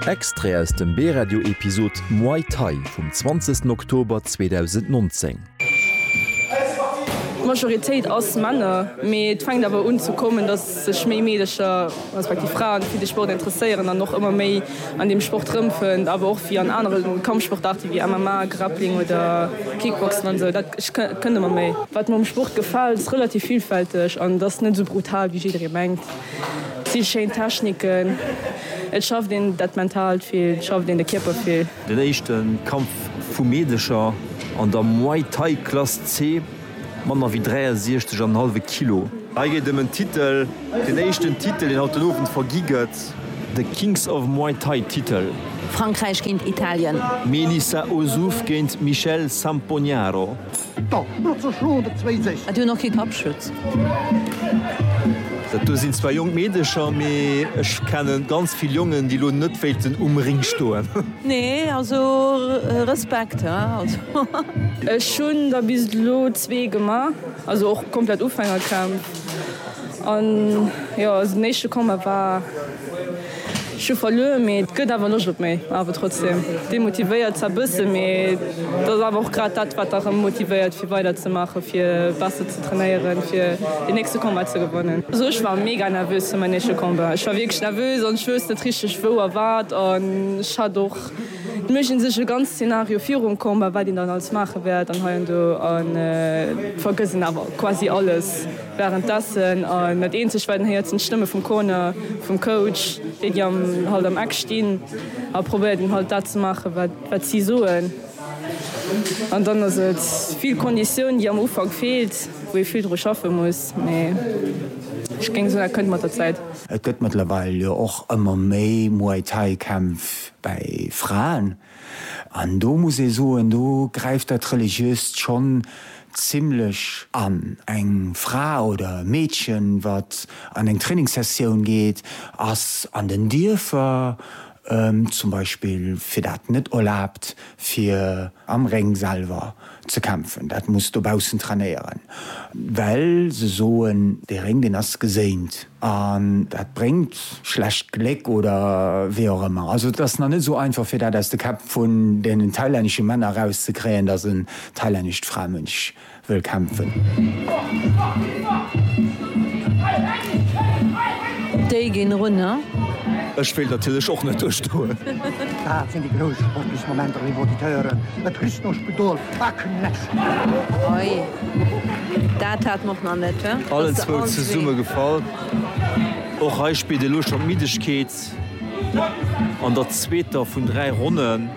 Extrait aus dem B-Radio Episod Muay Thai vum 20 Oktober 2019. D'Majoritéit ass Männer, mee et fänkt awer un ze kommen, datt sech méi Meedecher, respektiv Fraen, fir de Sport interesséieren an och ëmmer méi an deem Sport rëmfënnt, awer och wéi an anere Kampfsportaarte wéi MMA, Grappling oder Kickboxen an esou. Dat kënnt ëmmer méi. Wat mer um Sport gefält, ass relativ villfälteg an et ass net esou brutal, wéi jidderee mengt. Vill schéin Techniken, et schafft een dat Mentaalt vill, et schafft een de Kierper vill. Den éischte Kampf vu Meedercher an der Muay Thai Klass C, manner wéi 63 an en hallwe Kilo. Hei geet et ëm en Titel, den éischten Titel deen haut den Owend vergi gëtt. De Kings of Muay Thai Titel. Frankräich géint Italien. Melissa Ozouf géint Michelle Sampognaro. Hat jo nach kee Kapp schütz. Dat do sinn zwar jonk Meedecher, mee ech kennen ganz vill Jongen, déi lo net wéilten um Ring stoen. Nee, also Respekt, hä? Ech hunn der bis elo zwee gemaach, also och komplett Ufängercamp, an jo, den éischte Combat war. Ech hu verluer, mee et gëtt awer Loscht op méi. Awer trotzdeem demotivéiert zwar bëssen, mee et ass awer och grad dat, wat erëm motivéiert fir weider ze maachen, fir besser ze trainéieren, fir deen nächste Combat ze gewannen. Also ech war mega nervös fir mäin éischte Combat. Ech war wierklech nervös an ech wouss net richteg wou a wat. An ech hat och net méi sinn sech e ganz Szenario virum Combat, wat een dann alles maache wäert an heiando, an vergëss een awer quasi alles. Wärenddessen, a net eenzeg well, héiert sinn d'Stëmme vum Corner, vum Coach, déi déi am halt am Eck stinn a probéiert en halt dat ze maache wat si soen. An dann ass et vill Konditioun déi am Ufank feelt, wou ee vill dru schaffe muss, mee ech géing soen dat kënnt mat der Zäit. Et gëtt mëttlerweil jo och ëmmer méi Muay Thai Kämpf bäi Fraen. An do muss ee soen, do gräift dat Religiöst schonn zimlech an. Eng Fra oder e Meedchen, wat an eng Trainingssessioun geet, ass an den Dierfer zum Beispill fir dat net erlaabt, fir am Réng selwer ze kämpfen. Dat muss dobaussen trainéieren, well se soen, dee Réng, deen ass geséint. An dat bréngt schlecht Gléck oder wéi och ëmmer. Also et ass nach net esou einfach fir dat aus de Käpp vun deenen thailännesche Männer erauszekréien, datt en thailännescht Framënch wëll kämpfen. Ech wéilt natierlech och net duerchstoen. Oi, dat hat mer och nach net. Allen zwou zesumme gefall. Och hei spillt elo schon d'Middegkeet an der zweeter vun dräi Ronnen.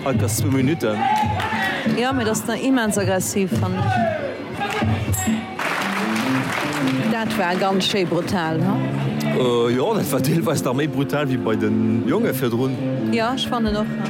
Hei ass zwou Minuten. Jo, mee dat ass nach immens aggressiv, fannen ech. Dat war ganz schéi brutal, ha? Jo, dat war deelweis nach méi brutal wéi bei den Jongen virdrun. Jo, ech fannen och, ha.